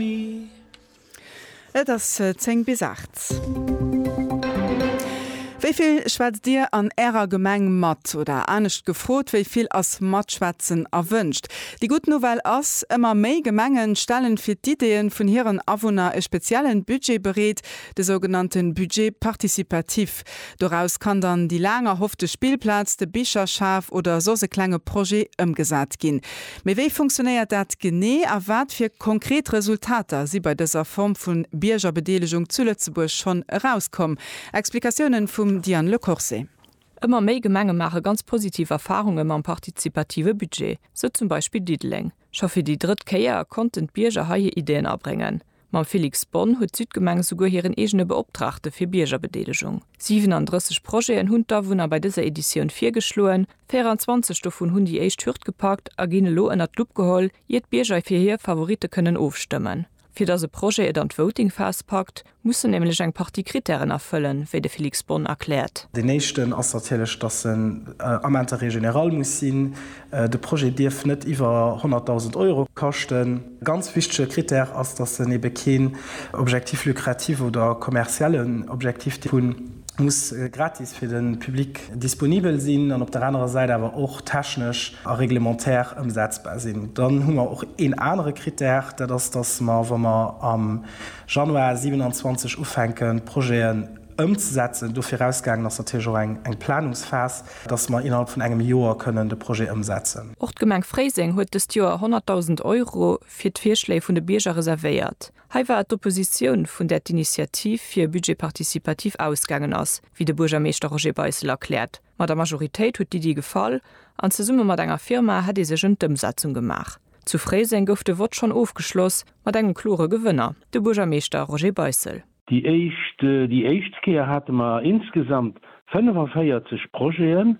Et ass 10 bis 8. Wéi vill schwätzt Dir an Ärer Gemeng mat? Oder anescht gefrot, wéi vill ass Matschwätzen erwënscht? Déi gutt Nouvelle ass, Ëmmer méi Gemenge stellen fir d'Ideeën vun hiren Awunner e speziellen Budget bereet, de sougenannte Budget participatif. Doraus kann dann déi laang erhoffte Spillplaz, de Bicherschaf oder soss e klenge Projet ëmgesat ginn. Mee wéi funktionéiert dat genee a wat fir konkret Resultater si bei dëser Form vu Biergerbedeelegung zu Lëtzebuerg schonn erauskomm? Explikatiounen vum Diane Le Corse. Ëmmer méi Gemenge maache ganz positiv Erfarunge mam partizipative Budget, sou zum Beispill Diddeleng. Scho fir déi drëtt Kéier konnten d'Bierger hei hir Iddien abréngen. Mam Felix Bonn huet d'Südgemeng esouguer hiren eegene Beoptraagte fir Biergerbedeelegung. 37 Projeten hunn d'Awunner bei dëser Editioun virgeschloen. 24 dovun hunn déi éischt Hürd gepackt a ginn elo ënnert d'Lupp geholl, ier d'Bierger fir hir Favoritte kënnen ofstëmmen. Fir datt e Projet et an d'Voting-Phas packt, muss en nämlech eng Partie Krittären erfëllen, wéi de Felix Bonn erkläert. Deen éischten ass natierlech, datt en Ament de règle générale muss sinn. De Projet dierf net iwwer 100.000 Euro kaschten. Ganz wichtege Critère ass, datt en ebe keen Objectif lucratif oder kommerziellen Objectif dierf hunn, muss gratis fir de Public disponibel sinn an op der anerer Säit awer och technesch a reglementaire ëmsetzbar sinn. Dann hu mer och een anere Critère, dat ass, datt mer, wa mer am Januar 27 ufänken d'Projeten ëmzesetzen, dovirausgaangen ass natierlech och eng Planungsphas, datt mer innerhalb vun engem Joer kënnen de Projet ëmsetzen. Och d'Gemeng Fréiseng huet dëst Joer 100.000 Euro fir d'Virschléi vun de Bierger reservéiert. Hei war et d'Oppositioun, vun där d'Initiativ fir e Budget participatif ausgaangen ass, wéi de Buergermeeschter Roger Beissel erkläert. Mat der Majoritéit huet d'Iddi gefall an zesumme mat enger Firma hätt ee sech ëm d'Ëmsetzung gemaach. Zu Fréiseng gouf de Vott schonn ofgeschloss mat engem klore Gewënner, de Buergermeeschter Roger Beissel. Déi éischt Kéier hate mer insgesamt 45 Projeten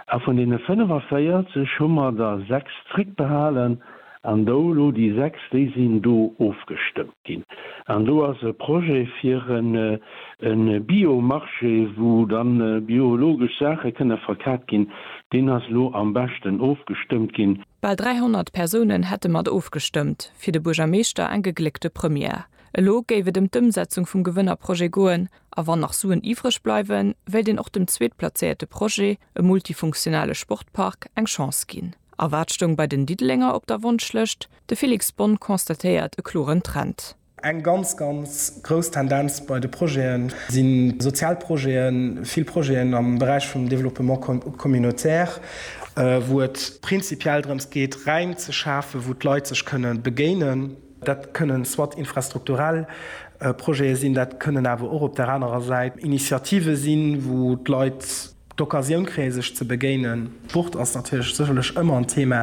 a vun deene 45 hu mer der sechs zréckbehalen an do elo déi sechs, déi sinn do ofgestëmmt ginn. An do ass e Projet fir e Bio-Marché, wou da biologesch Saache kënne verkat ginn, deen ass elo am beschten ofgestëmmt ginn. Bal 300 Persounen hätte mat ofgestëmmt, fir de Buergermeeschter eng gegléckte Première. Elo géif et ëm d'Ëmsetzung vum Gewënnerprojet goen a wann nach Suen iwwreg bleiwen, wéilt een och dem zweetplazéierte Projet, e multifunktionale Sportpark, eng Chance ginn. A wat stoung bei den Diddelenger op der Wonschlëscht? De Felix Bonne constatéiert e kloren Trend. Eng ganz, ganz grouss Tendenz bei de Projete si sozial Projeten, vill Projeten am Beräich vum Développement communautaire, wou et prinzipiell drëms geet, Räim ze schafen, wou d'Leit sech kënne begéinen. Dat kënnen soit infrastrukturell Projete sinn, dat kënnen awer och op där anerer Säit Initiative sinn, wou d'Leit d'Occasioun kréie sech ze begéinen. Sport ass natierlech sécherlech ëmmer en Thema.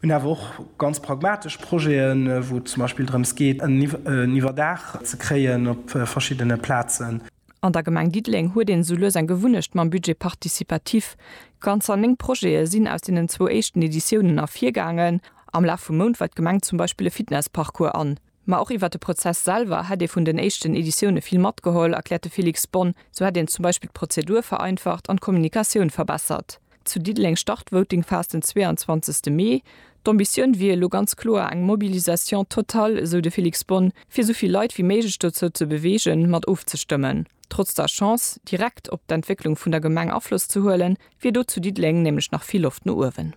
Mir hunn awer och ganz pragmatesch Projeten, wou et zum Beispill drëms geet, en Iwwerdaach ze kréien op verschiddene Plazen. An der Gemeng Diddeleng huet een esou lues eng Gewunnecht mam Budget participatif. Ganzer néng Projete sinn aus deenen zwou éischten Editiounen ervirgaangen. Am Laf vum Mount weist d'Gemeng zum Beispill e Fitnessparcours an. Ma och iwwert de Prozess selwer hätt ee vun den éischten Editioune vill matgeholl, erkläert de Félix Bonne. Sou hätt een zum Beispill d'Prozedur vereinfacht an d'Kommunikatioun verbessert. Zu Diddeleng start Voting Fast den 22 Mee. D'Ambitioun wier elo ganz kloer eng Mobilisation totale, esou de Felix Bonn, fir esou vill Leit wéi méiglech dozou ze beweegen, mat ofzestëmmen. Trotz der Chance, direkt op d'Entwécklung vun der Gemeng Afloss ze huelen, wier do zu Diddeleng nämlech nach vill Loft no uewen.